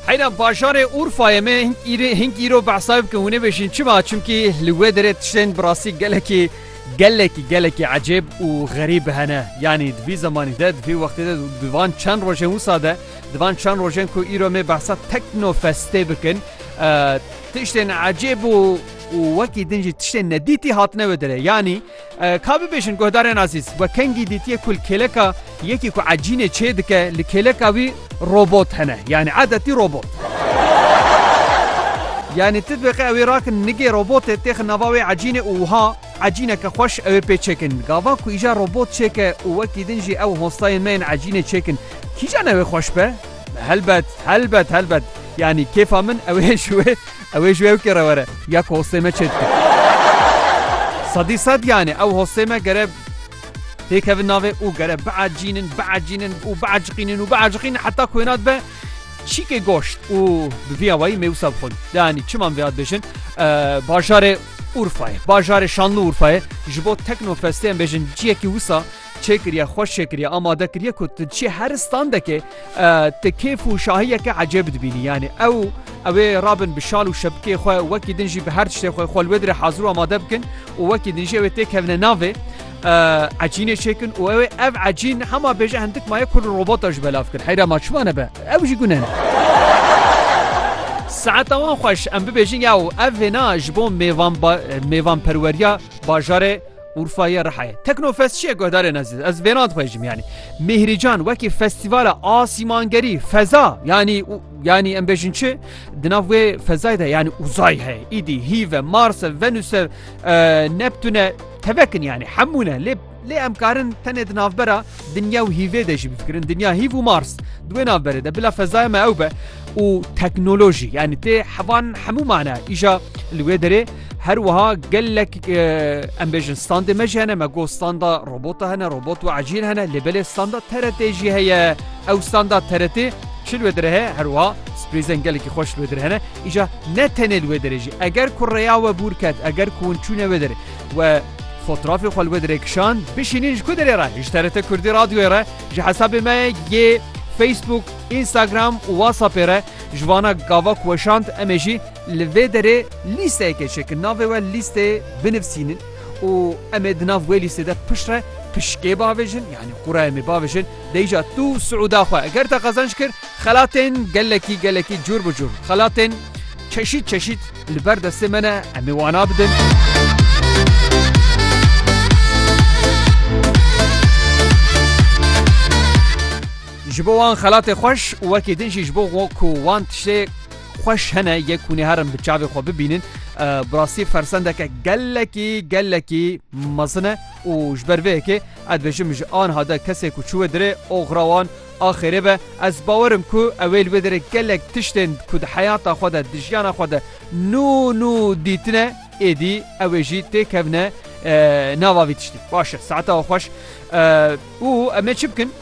Heyra bajarê Urfayê me hink îrê hink îro behsayê bikin hûnê bêjin çima çimkî li wê derê tiştên bi rastî gelekî gelekî gelekî ecêb û xerîb hene yanî di vî zemanî de di vî wextê de di van çend rojên wisa de di van çend rojên ku îro me behsa teknofestê bikin tiştên ecêb û û wekî din jî tiştên nedîtî hatine wê derê yanî Ka bibêjin guhdarên azîz, we kengî dîtiye ku li kêleka yekî ku ecînê çêdike li kêleka wî robot hene, yanî edetî robot. Yanî tu dibê qe ew ê rakin nigê robotê têxin nava wê ecînê û wiha ecîneke xweş ew ê pê çêkin. Gava ku îja robot çêke û wekî din jî ew hostayên me yên ecînê çêkin, kîjan ew ê xweş be? Helbet, helbet, helbet. Yanî kêfa min ew ê ji wê Ew ê ji ewkê re were ya ku hostê me çê dike. Sedî sed yanê ew hostê me gere têkevin navê û gere biecînin, biecînin û bieciqînin û bieciqînin heta ku hênat be çîkê goşt û bi vî awayî mêwisa bixwin. Deanî çiman vêhat bêjin bajarê Urfayê, bajarê şanlı Urfayê ji bo teknofestê em bêjin ciyekî wisa çêkiriye xweş çêkiriye amade kiriye ku tu diçî her standekê tu kêf û şahiyeke ecêb dibînî yanî ew ew ê rabin bi şal û şebikê xwe wekî din jî bi her tiştê xwe xwe li wê dire hazir û amade bikin û wekî din jî ew ê têkevine navê ecînê çêkin û ew ê ev ecîn hema bêje hindik maye ku robota ji belav kir heyra ma çima nebe ew jî gune ne Saeta wan xweş em bibêjin ya û ev vêna ji bo mêvan mêvanperweriya bajarê Urfa ye Rihayê. Teknofest çi ye guhdarên ezîz? Ez vêna dixwêjim yanî. Mîhrîcan wekî festîvala asîmangerî, feza yanî yanî em bêjin çi? Di nav wê fezayê de yanî uzay heye. Îdî hîve, Marse, Venuse, e, Neptune tevekin yanî hemû ne. Lê lê em karin tenê di navbera dinya û hîvê de jî bifikirin. Dinya hîv û Mars. Di wê navberê de bila fezaya me ew be û teknolojî yanî tê hevan hemû mane îja li wê derê Her wiha gelek em bêjin standê me jî hene me got standa robota hene robot û ecîl hene lê belê standa TRTê jî heye ew standa TRTê çi li wê dire heye her wiha sprêzen gelekî xweş li wê dire hene îja ne tenê li wê dire jî eger ku rêya we bûr ket eger ku hûn çûne wê dire we fotrafê xwe li wê dire kişand bişînîn ji ku dirê re ji TRT Kurdî radyoyê re ji hesabê me yê Facebook Instagram û WhatsAppê re ji vana gava ku weşand em ê jî Li vê derê lîsteyekê çê ki navê we lîstê binivsînin û em ê di nav wê lîstê de piştre pişkê bavêjin yanî qurayê mê bavêjin deyîca tu siûda xwe eger te qezanc kir xelatên gelekî gelekî cûr bi cûr xelatên çeşît çeşît li ber destê me ne em ê wana bidin. Ji bo wan xelatê xweş û wekî din jî ji bo ku wan tiştê xweş hene yê ku nê herin bi çavê xwe bibînin bi rastî fersendeke gelekî gelekî mezin e û ji ber vê yekê ez dibêjim ji anha de kesê ku çû wê dirê oxira wan axêrê be ez bawerim ku ewê li wê dirê gelek tiştên ku di heyata xwe de di jiyana xwe de nû nû dîtine êdî ewê jî têkevne nava vî tiştî baş e saeta xweş û em ê çi bikin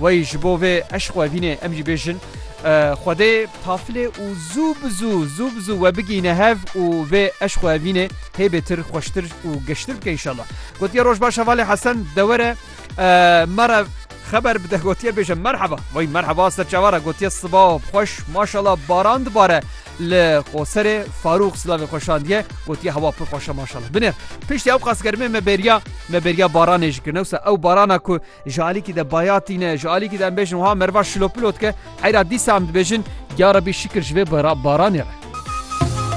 Wey ji bo vê eşq we vînê em jî bêjin Xwedê pafilê û zû bi zû zû bi zû we bigihîne hev û vê eşq we vînê hê bêtir xweştir û geştir bike înşallah. Gotiye roj baş hevalê Hesen dewere me re xeber bide gotiye bêje merheba wey merheba ser çawa re gotiye siba xweş maşala baran dibare li qoserê Farûx silavê xwe şandiye gotiye hewa pir xweşe maşala binêr piştî ew qas germê me bêriya me bêriya baranê ji kir newsa ew barana ku Ji alîkî de baya tîne, ji alîkî de em bêjin wiha meriva şilopilo dike, heyra dîsa em dibêjin, Ya Rebî şikir ji vê baranê re.